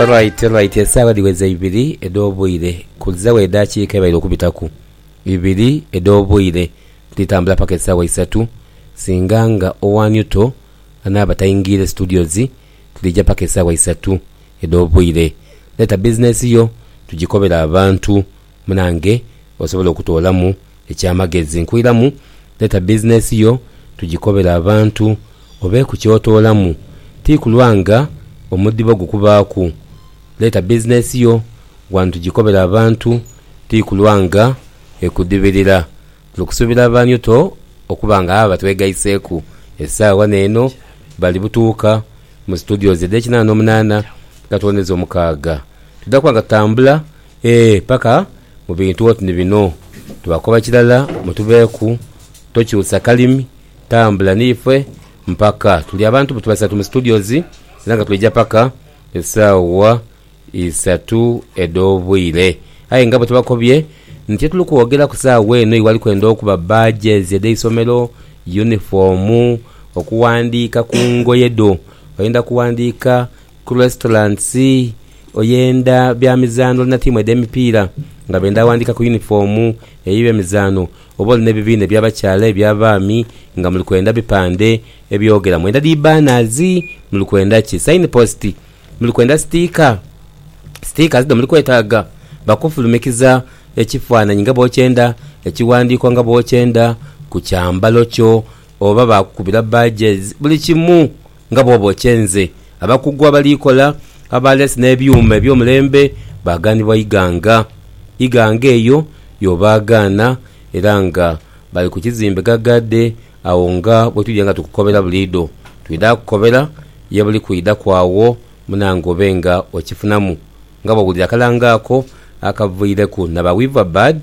Alright, alright, esaawa dhiweza ibiri edh'obwire kuzawo edhakiika ebaire okubitaku ibiri edh'obwire dhitambula paka esaawa isatu singa nga owa Newto anaaba taingiire studios dhija paka esaawa isatu edh'obwire. Leta business yo tugikobere abantu. munange osobole okutoolamu ekyamagezi. Nkuiramu leta business yo tugikobere abantu obeeku kyotoolamu ti kulwa nga omudibo gukubaaku. Leta business yo wano tugikobere abantu ti kulwa nga ekudibirira. Tuli kusuubira abanyu to okuba nga abo abatwegaiseeku esaawa wano eno bali butuuka mu studios edh'ekinaana omunaana nga tuwoneza omukaaga. Tudha kuba nga tutambula. Ee, paka mu bintu oti ni bino. Tubakoba kirala mutubeeku, tokyusa kalimi, tambula ni ife mpaka. Tuli abantu buti basatu mu studios era nga twaija paka esaawa isatu edh'obwire. Aye nga bwe tubakobye nti tye tuli kwogera ku saawa eno iwali kwenda okuba badges edh'eisomero, yunifoomu, okuwandiika ku ngoye dho. Oyenda kuwandiika. Ku restaurants, oyenda bya mizaanho na tiimu edh'emipiira nga benda ghandika ku yunifoomu eyo ye mizaanho. Oba oli n'ebibiina eby'abakyala, eby'abaami nga muli kwenda bipande ebyogera mwenda dhi banners, muli kwenda ki? Signpost, muli kwenda sticker? Stickers dho muli kwetaaga bakufulumikiza ekifaananyi nga bw'okyenda, ekighandiiko nga bw'okyenda ku kyambalo kyo oba baakukubira badges. Buli kimu Nga bw'obookye nze, abakugu abaliikola aba leesi n'ebyuma eby'omulembe baagaanibwa ighanga. Ighanga eyo y'obaagaana era nga bali ku kizimbe ghaghaadhe agho nga bwe twidha nga tukukobera buliidho. Twidha kukobera ye buli kwidhaku agho munange obe nga okifunamu nga bw'owulira akalango ako akavaireku na ba Weaverbird.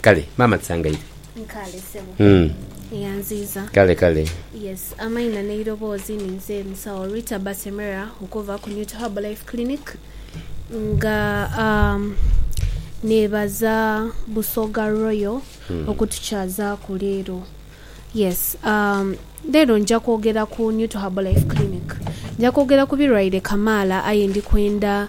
Kale maama tusangaire. Nkale sebo. Eyanziiza. Kale kale. Yes amaina neiroboozi ninze musawo Rita Basemera okuva ku New to Herbal Life Clinic nga um, nebaza Busoga Royal okutukyazaaku leero. Yes um, leero nja kwogera ku New to Herbal Life Clinic. Nja kwogera ku birwaire kamaala aye ndi kwenda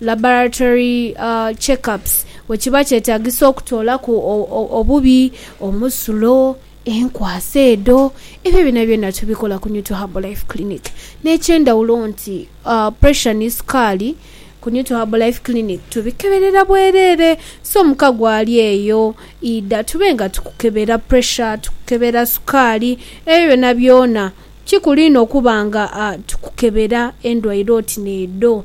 laboratory check-ups, bwe kiba kyetagisa okutoolaku obubi omusulo, enkwasa edho, ebyo byonabyona tubikola ku Neutral Herbal Life Clinic. N'ekyendhawulo nti pressure ni sukaali ku Neutral Herbal Life Clinic tubikeberera bwereere. So muka gwali eyo idha tube nga tukukebera pressure, tukukebera sukaali, ebyo byonabyona kikulu inho okuba nga tukukebera endwaire oti n'edho.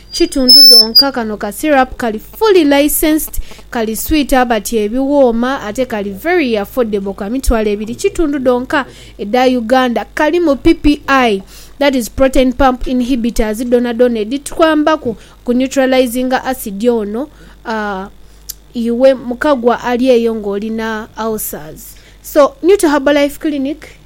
Kitundu dhonka kano ka syrup kali fully licensed, kali sweet abati ebiwooma ate kali very affordable ka mitwalo ebiri kitundu dhonka edha Uganda. Kalimu PPI that is protein pump inhibitors dhonadhona edhitwambaku oku neutralizinga acid ono aah iwe mukagwa ali eyo nga olina ulcers so Nuta Herbal Life Clinic.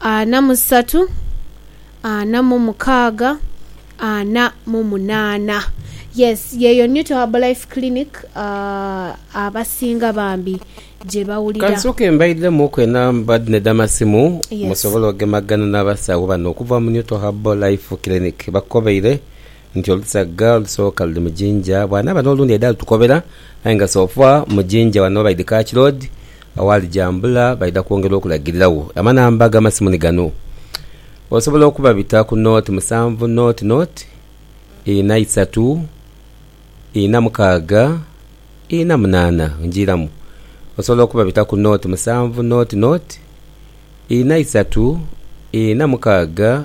Ana mu satu, ana mu mukaaga, ana mu munaana. Yes, yeeyo New to Herbalife Clinic abasinga bambi gye bawulira. Ka nsooke mbaidhemuuku enamba dhino edh'amasimu musobole ogemaganha n'abasawo bano okuva mu New to Herbalife Clinic. Bakukobeire Nti olusaga olusooka luli mu Jinja, bwanaaba n'olundi aidha lutukobera aye nga sofa mu Jinja wano baidhi Kach Road aghali Jambula baidha kwongera okulagiriragho. Amanamba g'amasimu ni gano, osobola okubabita ku nought musanvu nought nought ina isatu ina mukaaga ina munaana. Njiiramu, osobola okubabita ku nought musanvu nought nought ina isatu ina mukaaga.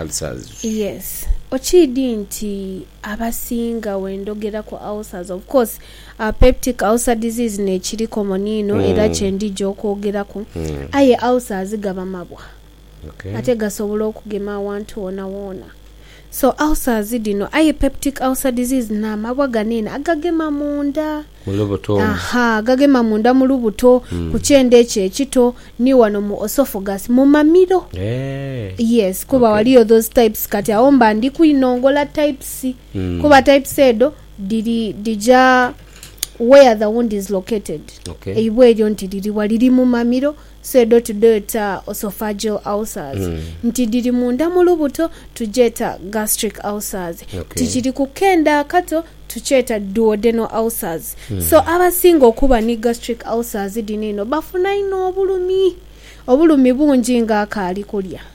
Ulcers. Yes okiidhi nti abasinga wendhogera ku ulcers of course our peptic ulcer disease nekiri common inho era kyendhija okwogeraku aye ulcers gaba mabwa ate gasobola okugema awantu wona wona so ulcers dhino aye peptic ulcer disease namabwa gano eno agagema munda. Mu lubuto omwo. Aha, gagema munda mu lubuto, ku kyenda ekyo ekito, ni wano mu oesophagus, mu mamiro. Eeh. Yes, kuba Okay. waliyo those types. Kati agho mba ndi kwinongola types. Mm. Kuba types edho dhiri, dhija where the wound is located. Okay. Eibwa eryo nti liri wa? Liri mu mamiro, Pseudo tudheeta oesophageal ulcers nti dhiri munda mu lubuto tugyeeta gastric ulcers nti kiri ku kenda akato tukyeeta duodenal ulcers so abasinga okuba ni gastric ulcers dhino eno bafuna inho obulumi obulumi bungi nga akaali kulya.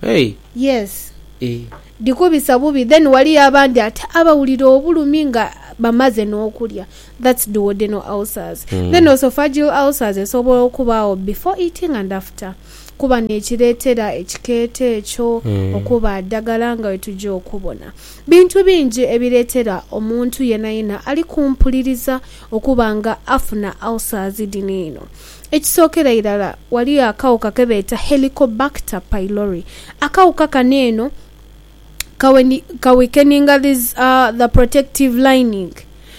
Hey. Yes. Eeh. Dhikubisa bubi then waliyo abandi ate abawulira obulumi nga bamaze n'okulya that's duodenal ulcers. Then oesophageal ulcers esobola okubaagho before eating and after kuba n'ekireetera ekikeeto ekyo okuba adagala nga wetuja okubona. Bintu bingi ebireetera omuntu yenayena ali ku mpuliriza okuba nga afuna ulcers dhino eno. Ekisookera irala, ghaliyo akawuka ke beeta Helicobacter pylori. Akawuka kano eno ka weakeninga the protective lining.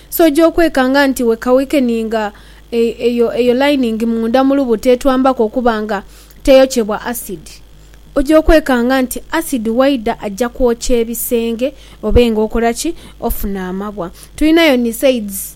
So oja okwekanga nti we ka weakeninga eyo lining munda mu lubuto etwambaku okuba nga teyokyebwa acid. Oja okwekanga nti acid waidha aja kwokya ebisenge obe nga okora ki? Ofuna amabwa. Tulinayo NSAIDs.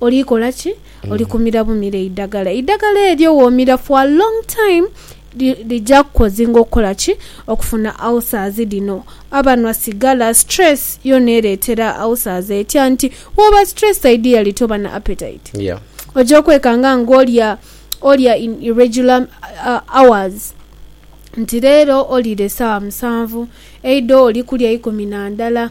Oli kola ki? Oli kumira bumire eidagala. Eidagala eryo womira for a long time lija kukozinga okukola ki? Okufuna ulcers dhino. Abanhwa sigala, stress yoona ereetera ulcers etya nti wooba stressed ideally toba na appetite. Oja okwekanga nga olya olya in irregular hours. Nti leero oliire saawa musanvu, eidho oli kulya ikumi na ndala.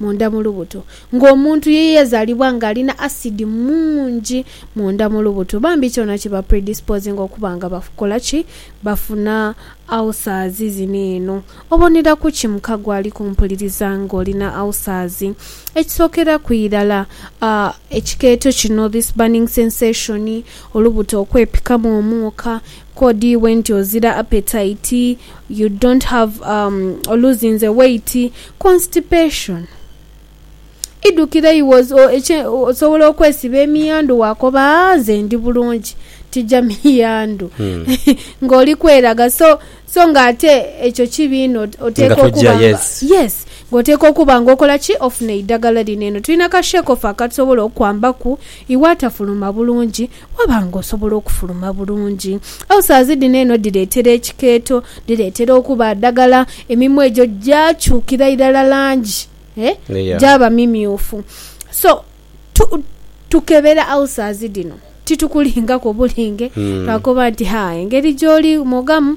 Munda mu lubuto. Ng'omuntu ye yazaalibwa ng'alina asidi mungi munda mu lubuto, bambi kyona kiba predisposinga okuba nga bakola ki? Bafuna ulcers. Zino eno. Obonera ku ki mukago ali kumpuliriza ng'olina ulcers? Ekisookera ku irala, ekikeeto kino, this burning sensation, olubuto okwepikamu omwoka, kodi iwe nti ozira appetite, you don't have, um, oluzinze weight, Constipation, Idhukire iwe osobola okwesiba emiyandhu waakoba haa nze ndi bulungi tija miyandhu ng'oli kweraga so so ng'ate ekyo kibi inho oteekwa okuba nga yes nga oteekwa okuba nga okola ki ofuna eidagala lino. Eno tulina ka shekofu akatusobola okukwambaku iwe atafuluma bulungi Waba nga osobola okufuluma bulungi. Ulcers dhino eno dhireetera ekikeeto, dhireetera okuba adagala, emimwa egyo gyakyukira irala langi gyaba mimyufu. So tu tukebera ulcers dhino titukulingaku obulinge lwakuba nti haa engeri gyoli mwogamu.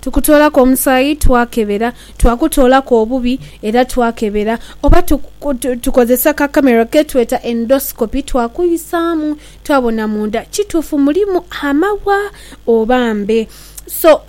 Tukutoolaku omusaayi, twakebera. Twakutoolaku obubi, era twakebera. Oba tukozesa ka camera ketweta endoscopy, twakuisaamu, twabona munda kituufu mulimu amaghwa oba mbe. So,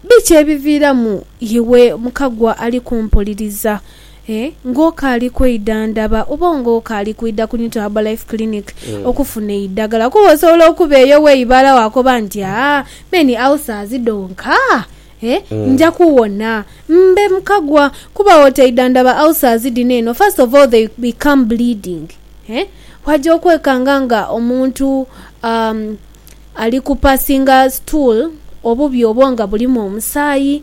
biki ebiviiramu iwe mukagwa ali kumpuliriza? E. Ng'okaali kwidha ndaba oba ng'okaali kwidha ku Newton Herbal Life Clinic okufuna eidhagala kuba osobola okuba eyo weibala waakoba nti, Aa, me ni ulcers dhonka, e, nja kuwona. Mbe mukagwa kuba bwotaidha ndaba ulcers dhino eno, first of all they become bleeding, e, waaja okwekanga nga omuntu, um, ali kupassinga stool, obubi obwo nga bulimu omusaayi.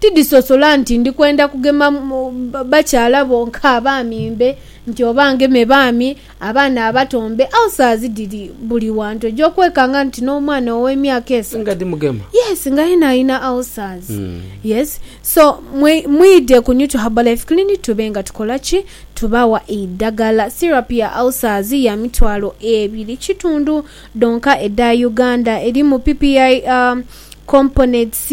Tidhisosola nti ndi kwenda kugema bakyala bo nk'abaami mbe nti oba ngeme baami, abaana abato mbe. Ulcers dhiri buli wantu. Oja okwekanga nti n'omwana ow'emyaka esatu. Yes, nga yena alina ulcers. Yes. So, mwidhe ku Nutu Herbal Life Clinic tube nga tukola ki? Tubawa eidhagala. Syrup ya ulcers ya mitwalo ebiri kitundu dhonka edha Uganda. Erimu PPI components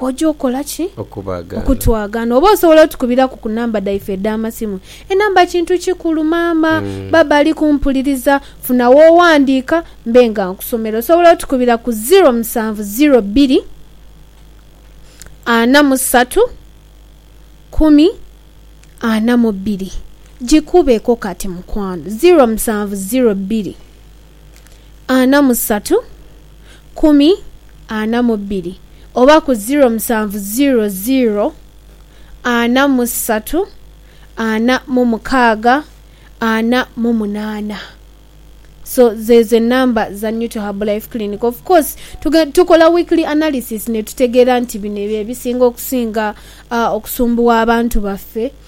Oja okola ki? Okutwagana. Oba osobola otukubiraku ku namba dhaife edh'amasimu. Enamba kintu kikulu maama. Baaba ali kumpuliriza. Funa w'owandiika mbe nga nkusomera. Osobola otukubira ku ziro musanvu ziro bbiri ana mu satu kumi ana mu bbiri. Gikubeeko kati mukwano. Ziro musanvu ziro bbiri. ana mu satu, kumi ana mu bbiri oba ku ziro musanvu ziro ziro ana mu satu ana mu mukaaga ana mu munaana so zeezo enamba za New to Herbal Life Clinic of course tukola weekly analysis netutegeera nti bino byebisinga okusinga okusumbuwa abantu baffe.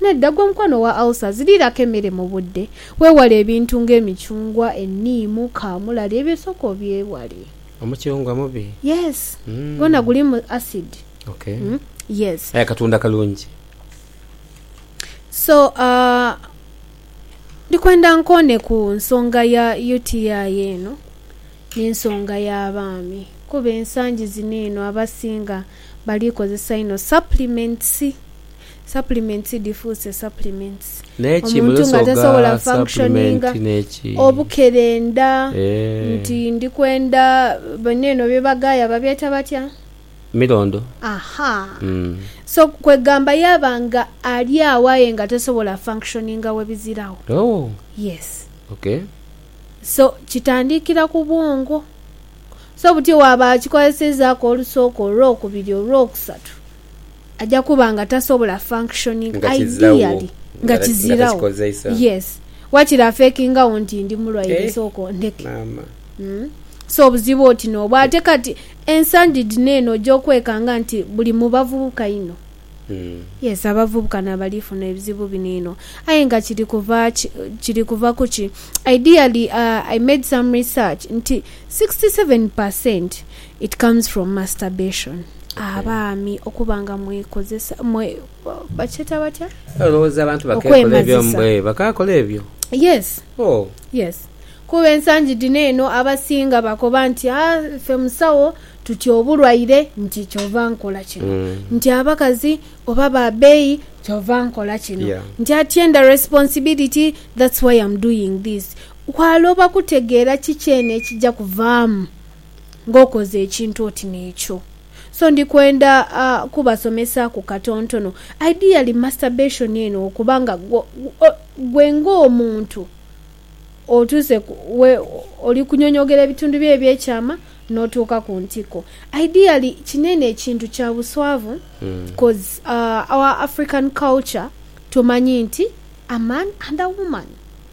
Nedda, gwe mukwano owa ulcers, liiraku emere mu budde. Weewale ebintu nga emicungwa, enniimu, kaamulali, ebyo sooka obyewale. Omucungwa mubi? Yes. Gwona gulimu acid. Okay. Yes. Aye akatunda kalungi. So, ndi kwenda nkoone ku nsonga ya UTI eno n'ensonga y'abaami kuba ensangi zino eno abasinga bali kozesa inho supplements. Supplements dhifuuse supplements. Naye ki Omuntu nga mulosoga tasobola supplement functioninga neki obukerenda nti eeh. ndi kwenda bino eno bye bagaaya babyeta batya? Milondo Ahaa. umm. So kwegamba yaba nga ali agho aye nga tasobola functioninga we biziragho? Ooh Yes. Okay. So kitandikira ku bwongo. So buti bwaba akikozesezaku olusooka, olwokubiri, olwokusatu, aja kuba nga tasobola functioning ideally nga kiziragho yes wakiri afekingagho nti ndi mulwaire sooka ondheke so obuzibu oti nobwo ate kati ensangi dhino eno oja okwekanga nti buli mu bavubuka inho yes abavubuka nabali funa ebizibu bino inho aye nga kiri kuva kiri kuva kuki ideally i made some research nti sixty seven per cent It comes from masturbation abaami okuba nga mwekozesa mwe bakyeta batya olowooza abantu bakekola ebyo okwemazisa. eeh bakakola ebyo Yes ooh. yes kuba ensangi dhino eno abasinga bakoba nti aah ffe musawo tutya obulwaire nti kyova nkola kino nti abakazi oba ba beeyi kyova nkola kino Yeah. nti atyenda responsibility that's why am doing this. Kwaloba kutegeera kiki eno ekija kuvaamu. nga okoze ekintu oti n'ekyo. So ndi kwenda kubasomesa ku katontono. Ideally masturbation eno okuba nga gwe ng'omuntu otuuse ku we oli kunyonyogera ebitundu byo eby'ekyama n'otuuka ku ntiko. Ideally kino eno ekintu kya buswavu coz our African culture tumanyi nti a man and a woman.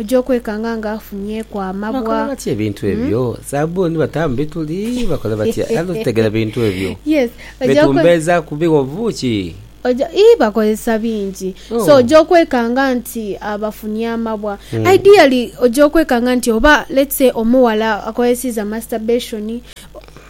Oja okwekanga nga afunyeku amabwa. Bakola batya ebintu ebyo? Sabbuni bata mu bituli? Bakola batya? Ani otegera bintu ebyo? Yes. Oja okwe. Betumbeeza ku bigho buuki? Oja, ii, bakozesa bingi. So, Oh. oja okwekanga nti abafunye amabwa. Ideally, oja okwekanga nti oba, let's say, omughala akozeseiza masturbation,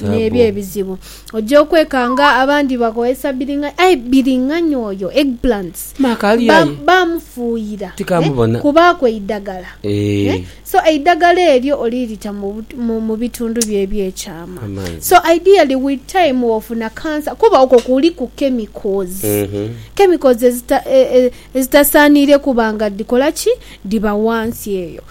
N'ebyo ebizibu oja okwekanga abandi bakozesa biringanya aye biringanya oyo eggplants bamufuuyira kubaaku eidagala so eidagala eryo olirita mu bitundu byo eby'ekyama so ideally with time wofuna cancer kuba okwo kuliku chemicals chemicals ezitasaaniire kuba nga dhikola ki? Dhiba wansi eyo.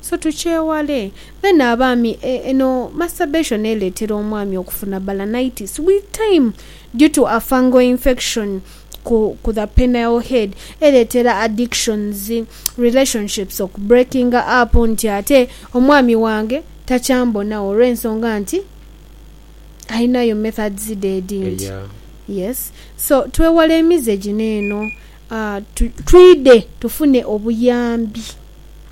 So tukyewale. Then abaami e, eno masturbation eletera omwami okufuna balanitis with time due to a fungal infection ku ku the penile head eletera addictions, relationships oku breakinga up nti ate omwami wange takyambonagho olwensonga nti alinayo methods dhe edindi. Eya. Yes. So twewale emize gino eno, a, tu, twidhe tufune obuyambi.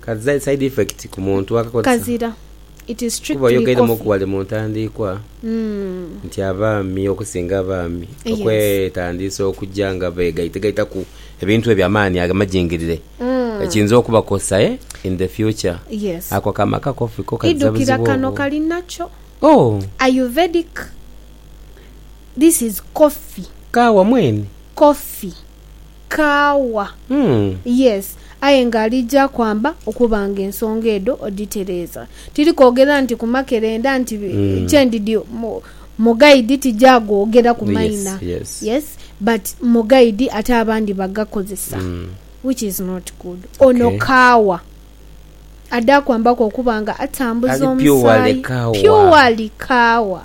Ka zizaire side effect ku muntu akakozesa. Kazira. It is strictly coffee. Kuba oyogeiremu ku ghale mu ntandiikwa nti abaami okusinga abaami okwetandiisa okuja nga begaitegaitaku ebintu ebyo amaani ago amajingirire kiyinza okubakosa in the future. Yes. Ako akaama ka coffee ko kazira buzibu obwo. Idhukira kano kali nakyo. Oh. Ayurvedic. This is coffee. Kaawa mwene. Coffee. Kaawa. Yes, aye nga aliija kwamba okuba nga ensonga edho odhitereeza. Tiri kwogera nti ku makerenda nti kye ndidhi mu gaidi tija googera ku maina. Yes, but mu gaidi ate abandi bagakozesa which is not good. Ono kaawa adha kwambaku okuba nga atambuza omusaayi. Purely kaawa.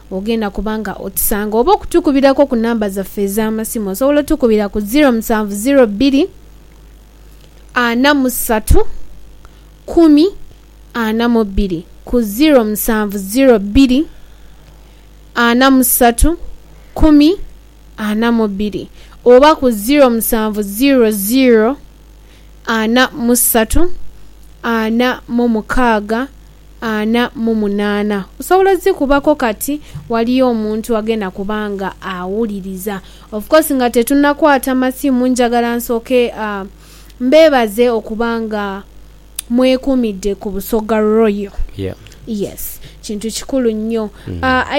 Ogenda kuba nga otusanga oba okutukubiraku ku namba zaffe ez'amasimu. Osobola otukubira ku ziro musanvu ziro bbiri ana mu satu kumi ana mu bbiri, ku ziro musanvu ziro bbiri ana mu satu kumi ana mu bbiri oba ku ziro musanvu ziro ziro ana mu satu, ana mu mukaaga, ana mu munaana. Osobola odhikubaku kati waliyo omuntu agenda kuba nga awuliriza. Of course nga tetunakwata masimu njagala nsooke mbeebaze okuba nga mwekumidde ku Busoga Royal. Yes kintu kikulu nnyo.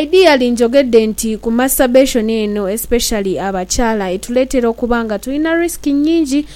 Ideally njogedde nti ku masturbation eno especially abakyala etuleetera okuba nga tulina risk nnyingi.